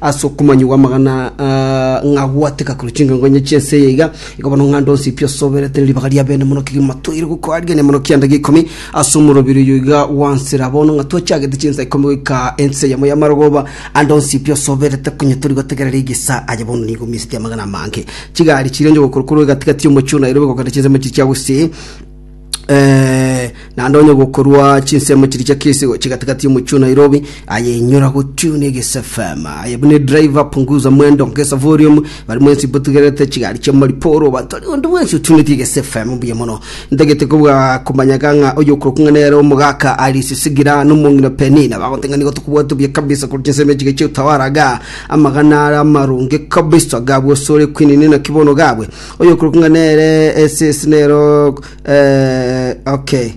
Ase okomanya gw'amagana ng'a gwateka korwa chingengonye chi'ense eye iga, igo bono ng'a ndonsi pi osoberete ne ribaga ria bene mono kegima toire gokoa rigania mono kianda gia ikomi ase omorobiri oyo iga gwansera bono ng'a twachagete chinsa ikomi goika ense eyemo y'amarogoba andonsi pi osoberete konya tori gotegerera egesa aye bono nigo misiti amagana amange chigari chirenche gokora korwa egati gati y'omochie o Nairobi gokenda chinsemo echi chia gusii Eh, naende onye gokorwa chinsemo chiri chia kesi gochi katikati y'omochio nairobi ayenyora gotiuna egese fm aye bune driver punguza mwendo ngesa volume bari mwensi botugerete chigari chia mariporo batori onde mwensi otuneti egese fm mbuya mono ntagete kobwa komanyaga ng'a oyo okorokung'a nere omogaka arisisigira nomong'ina penina bagoteng'ani gotokobwatu buya kabisa kori chinsemo echiga chia utawaraga amagana ara amaronge kabisa gabwo sore kwinini naki bono gabwe Oyokorokwa ng'a nere esese nero okay.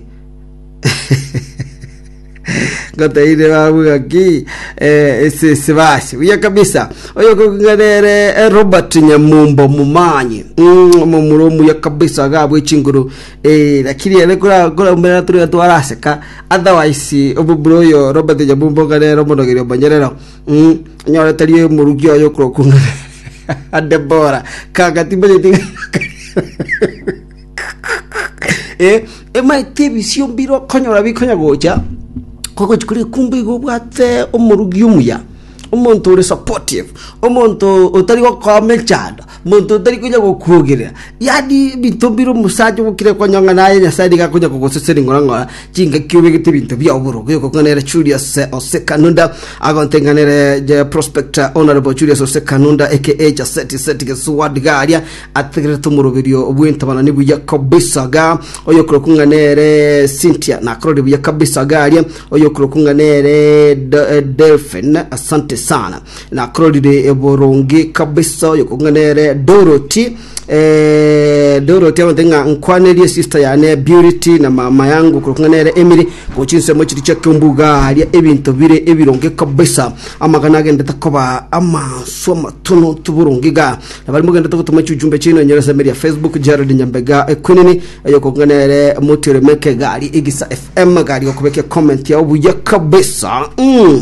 ngoteire babuga ki esese basi buya kabisa oyokorokwa ng'a nere eh, robert nyamumbo mumanye Mm, omomura omuya kabisa agabwe chinguru Eh, lakini ere kora- korambera tore twaraseka otherwise omomura oyo robert nyamumbo ng'a nere omonogeria omonyerero Mm, nyore tari omoruki oyo okorokunda Debora kagati mbanyeti eh emaite ebisio mbiro konyora bikonya gocha kogochi kuri kumbe igo obwate omorugi omuya omonto ore supportive omonto otari gokoa mechando Monto otari konya gokwogerera, yaani ebinto mbire omosacha ogokire konyong'ana aye Nyasae nigo akonya kogoseseni ng'ora-ng'ora chingaki obegete ebinto bi'oboro. Gekokong'anere Julius Ose Kanunda, agonte ng'a nere je Prospector Honourable Julius Ose Kanunda aka Chaseti Seti Gesuwa Digaria, ategerete omoroberio bw'entabanani buya kabisa iga, oyokorokwa ng'a nere Cynthia nakororire buya kabisa iga aria, oyokorokwa ng'a nere Do- eh, Delphine, asante sana. Nakororire boronge kabisa oyo kong'ana ere Dorothy eh, Dorothy abante ng'a nkwanerie sister yane Beauty na mama yangu kong'ana ere Emily gochi nsemo chiri chia kembuga haria ebinto bire ebironge kabisa amagana agendete koba amanso amatono toboronge ga nabari mogendete gotoma chujumbe chino enyora semeri ya Facebook Jared Nyambega ekwenini oyo kong'ana ere motiore meke gari igisa FM gari gokubekia comment yao buya kabisa mm.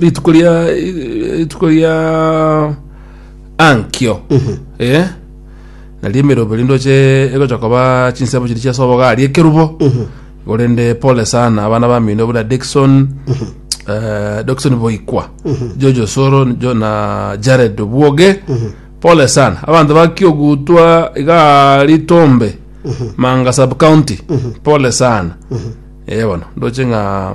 rituko ria rituko ria ankio eh nari emerobe rinde oche egocha koba chinsemo chiri chiase obogari ekerubo orende pole sana abana bamino obuna Dickson eh, Dickson Boikwa Jojo Soro jo na Jared Obwoge pole sana abanto bakiogutwa iga ritombe Manga sub county pole sana eh bono ndoche ng'a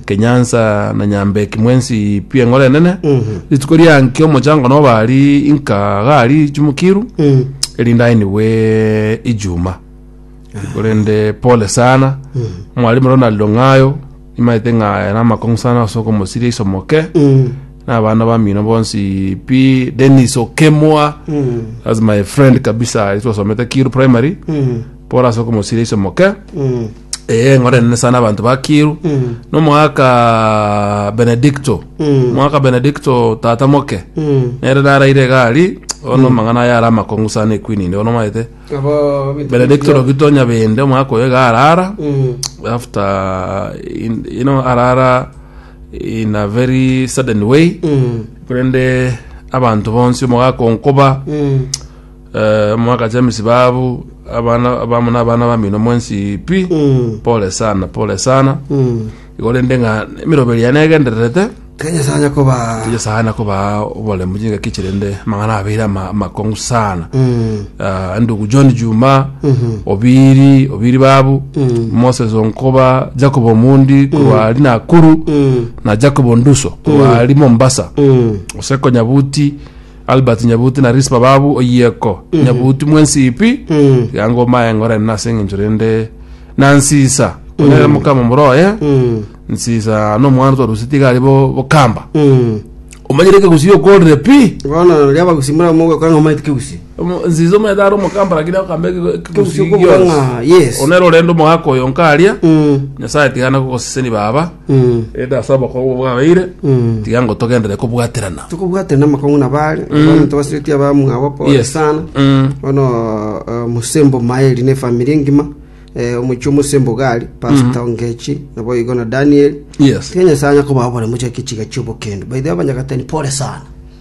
Kenyansa na Nyambeki mwensi pi eng'ora enene, rituko ria nki omochango noba ari inka gari chumukiru, erinde ainigwe ijuma. Korende pole sana, Mwalimu Ronald Ong'ayo, nimaete ng'a aya namakong'u sana ase okomosiria iso moke, na abana bamino bonsi pi, Dennis Okemwa, that's my friend kabisa, ase twasomete Kiiru Primary, Paul ase okomosira iso moke Mm. ee eng'ora enene sana abanto bakiru Mm. nomwaka benedicto Mm. mwaka benedicto tata moke Mm. nere naraire gari ono mang'ana aya ara amakong'u sana ekwini inde ono maete Abo bita- benedicto rogito nyabende omwaka oyo iga arara Mm. after in, you know arara in a very sudden way Mm. korende abanto bonsi omogakonkoba Mm. Mwagacha emisiba abu abana abamo na abana bamino mwensi pi pole sana pole sana igo rende ng'a emiroberi yaye negendererete Ke Nyasae anya koba tiyo sana koba oboremu chingaki chirende amang'ana abeire ama- amakong'u sana Ah, ndugu john juma obiri obiri babu moses onkoba jacob omundi korwari nakuru na jacob onduso korwari mombasa osekonyabuti Albert Nyabuti na Rispa Babu Oyieko Nyabuti mwensipi Ganga omaye ngorene nase eng'encho rende na Nsisa onere mokama moroye Nsisa nomwana twarusetie iga ari bo bokamba omanyire ekegusi okorire pi bono oria abagusi mura mogokora ng'a maite kegusi Omo- Nsisa omanyete ari omokamba lakini akamba Kegusi okobua ng'a, yes. onere orende omogaka oyo nkaria Mm. Nyasaye tigana gogoseseni baba Erinde ase obokong'u bwabeire, tiga ngo togenderere kobwaterana. tokobwaterana amakong'u na baare abanto basireti abamwabo pole Yes. sana Mm. bono eh, musembo maeli ne famiri engima eh, omochi omosembo gari pastor ngechi nabo igo na daniel Yes. tiga nyasaye anya kobabore mochake chiga chiobokendo baithe abanyagatani pole sana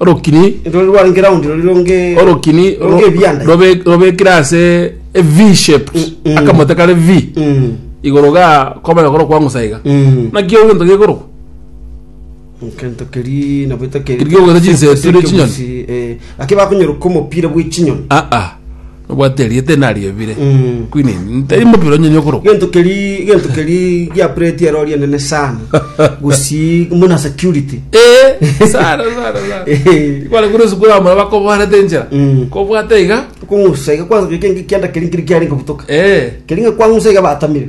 orokini Rori rware ground rori ronge orokini ro- ronge ebianda. robe- robekire ase a v shape Mm, mm. akamote kare v Mm. igoro ga komanya koro kwangusa iga Mm. naki egento gekorokwa Kento keri nabo ito keri. Keri giogoita chinsetu ne chinyoni. Lakini bakonyoroka omopira bwe chinyoni. aa Nobwate erieta enari ebire. Mm. Kwini ntari mopira onyenye okoro. gento keri gento keri gia plate ero ri enene sana gusi muna security Eh, sana sana sana. Eh. Kwale kuri sukuru amara bakobarete enchera. Mm. Kobwate iga. kungusa iga kwanza keke kianda keri kiri kiari nkobutoka Eh. keri nga kwangusa iga batamire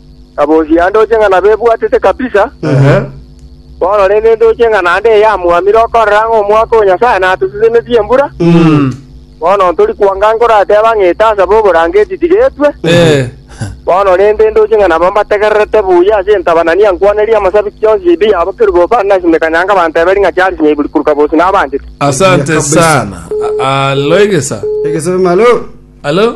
na bonsi ya ndooche ng'a nabebwatete kabisa, bono rende ndooche ng'a naende eyamwamire okorera ng'a omwaka o Nyasae natosesenirie embura, bono ntori kwanga nkorateba ng'a etaasa b'oborangeti tigetwe, bono rende ndooche ng'a nabo mbategererete buya ase entabanani ya nkwaneria y'amasabiti yonsi ya ebiya abo kerubo bare nase emekanyanga banteberi ng'a chiarisinya iguru korwa kabosi nabanchete. Asante sana. Alo egesa. Egesa malo. Alo.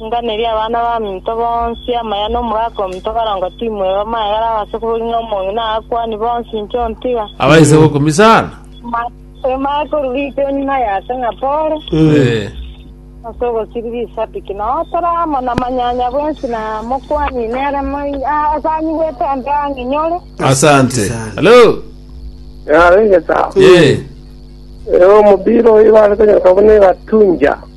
Inganeria abana baminto bonsi amaya nomogaka ominto karongo timweba magera ase kobori ng'a omong'ina akwani bonsi inche ontiga. Abaise gokumia sana. Amaya korwa riko enyuma yase ng'a pore, Eh. ase ogosiriria isabiki, na otore amo na manyanya bwensi na mokwani nere moi- a- asanyigwete onde ang'e nyore. Asante. Hello. Yarenge sawa. Eh. Ero omobira oyo bare konyora buna egatunja.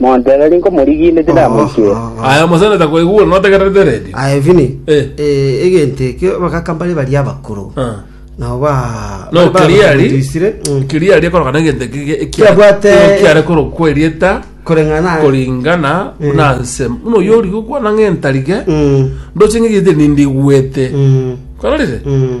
Montebe riko morigiine tiramoikera. Aye omosani takoigure notegererete eredio. Aye Vini, Eh. eh, egento ekio abagaka mbare baria abakoro. Ah. Nabo ba No kiliari. Isire. Mm. Kiliari ekoroka na egento eki Kiabwate- kiare korokwa erieta Koreng'ana. koringana Mm. na nse. Muno yori gokwana ng'entarige. Mm. Ndoche ng'egete nindigwete. Mm. Kororire? Mm.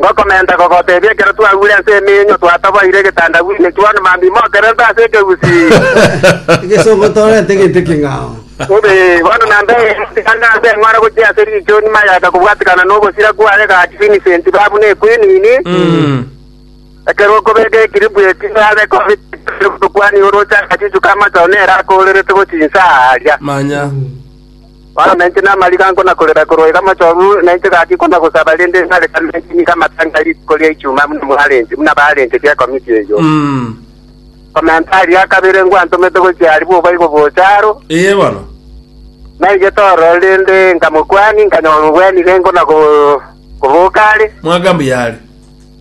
Ngokomenta kogotebia ekero twagure ase emenyo twatoboire egetandabu ime Juan Mambi mokererete ase ekegusii. Egesongo torente gento king'ao. Bobe, bono nambere tigana ase eng'ora gochia ase riichoni mayaka kobwatekana nobosira kwaye gaki Vincent babu ne Quinini. Ekero okobeka ekiribu eki nabe kobekire gotokwania oroche agachuchu k'amachao nere akoorerete gochia inse aa aria. Manya. Bono nainche namarigango na korera korwa iga mochorwe, nainche gaki kona gosaba rende nare kamenche nigo amatanga a rituko ria Ichuma buna mwarenche, buna barenge chi'ekomiti eyio. Komenta aria a kabere ngwantomete gochia aria bobaigo gocha aro. Ee bono. Naigete ororo rende nkamokwania, nkanyora obwanirengo na koboka are. Mwaka mbuya are.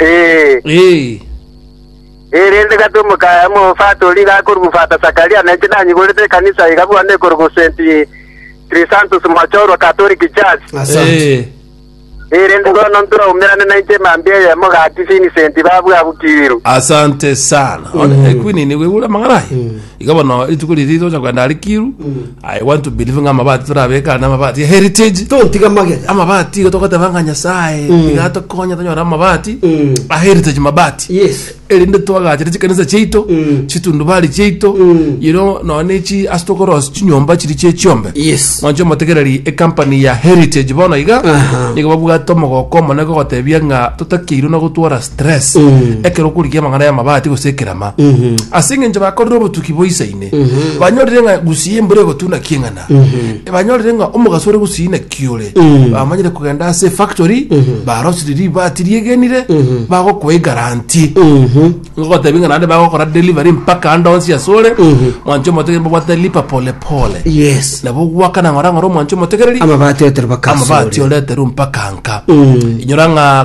Ee, Ee, erinde gati omoka- omofatori iga akorwa Fata Sakaria na inche nanyiborete ekanisa iga buna ekorwa St. Chrysanthus Mwachorwa Catholic Church. Asante. ee, Erinde bono ntwaumerane na inche mambia eyemo gati Vincent babwabukiirwe. asante sana one ekwini nigo igure amang'ana aye Iga bono rituko riria tocha kogenda arikiru i want to believe ng'a amabati torabeka na amabati ya heritage Tontiga magega. amabati iga togoteba ng'a nyasaye iga atokonya tonyore amabati Mm. a heritage mabati Yes. erinde twagachere chikanisa chiaito Mm. chitundubari chiaito Mm. yero nonya nechi ase tokorosi chinyomba chiri chie chiombe Yes. mwanche omotegereri ecompany ya heritage bono iga Aha. nigo babwate omogoko omone gogotebia ng'a totakeirwe na gotwara tres ekero okorigia amang'ana y'amabati gose ekerama ase eng'encho bakorire obotuki boisaine banyorire ng'a gusii embura egotuna kieng'ana banyorire ng'a omogaso ore gusii naki ore bamanyire kogenda ase efactory barosire ribati riegenire bagokoa egaranti ngogotebi ng'a naende bagokora delivery mpaka ande onsi ase ore mwancho omotegereri mbabwate lipa pole pole yes nabo gwakana ng'ora ng'ora omwancho omotegereri amabati otere amabati bakasore oreterwe mpaka nka inyora ng'a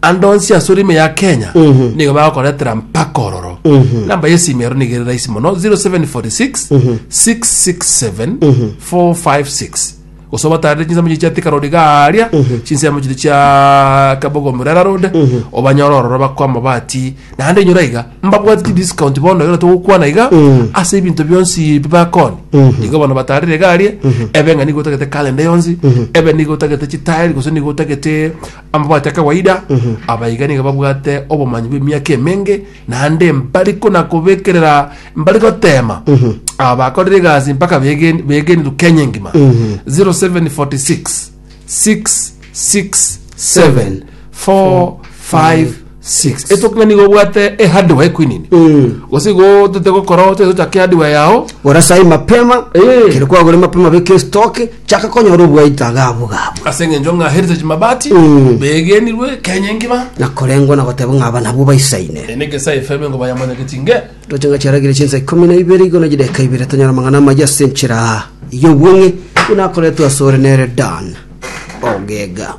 Ande onsi ase orimo ya Kenya nigo bagokoretera mpaka ororo. Namba ya esimi ero nigo ere rahisi mono 0746 667 456 gose obatarere chinsemo chiria chiatika road garia chinsemo chiria chia Kabogo Murera road obanyore ororo bakoe amabati naende inyora iga mbabwate chidiscount bono ekero togokwana iga ase ebinto bionsi bi bakoni nigo bono batarire iga aria ebe ng'a nigo otagete calendar yonsi ebe nigo otagete chitile gose nigo otagete Amabati a kawaida, abaiga nigo babwate obomanyi bw'emiaka emenge, naende mbari konakobekerera, mbari goteema aba bakorire egasi mpaka begen- begenirwe Kenya engima. 0746 667 4 6 Eto ng'a nigo obwate ehardware ekwinini Mm. gose igo tote gokora ote tochake hardware yao Gora sai mapema Eh. kero kwagore mapema beka estoke chaka konyora obwaito agabu gabu ase eng'encho ng'a heritage mabati Mm. begenirwe kenya engima nakorengwa nagoteba ng'a aba nabwo baisaine enege sa efeme ngo bayamanyagetie nge toche ng'a chiaragire chinsa ikomi na ibere igo na chideka ibere tonyora mang'ana amaye ase enchera iyo obweng'e buna akoretwe asore nere dan ogega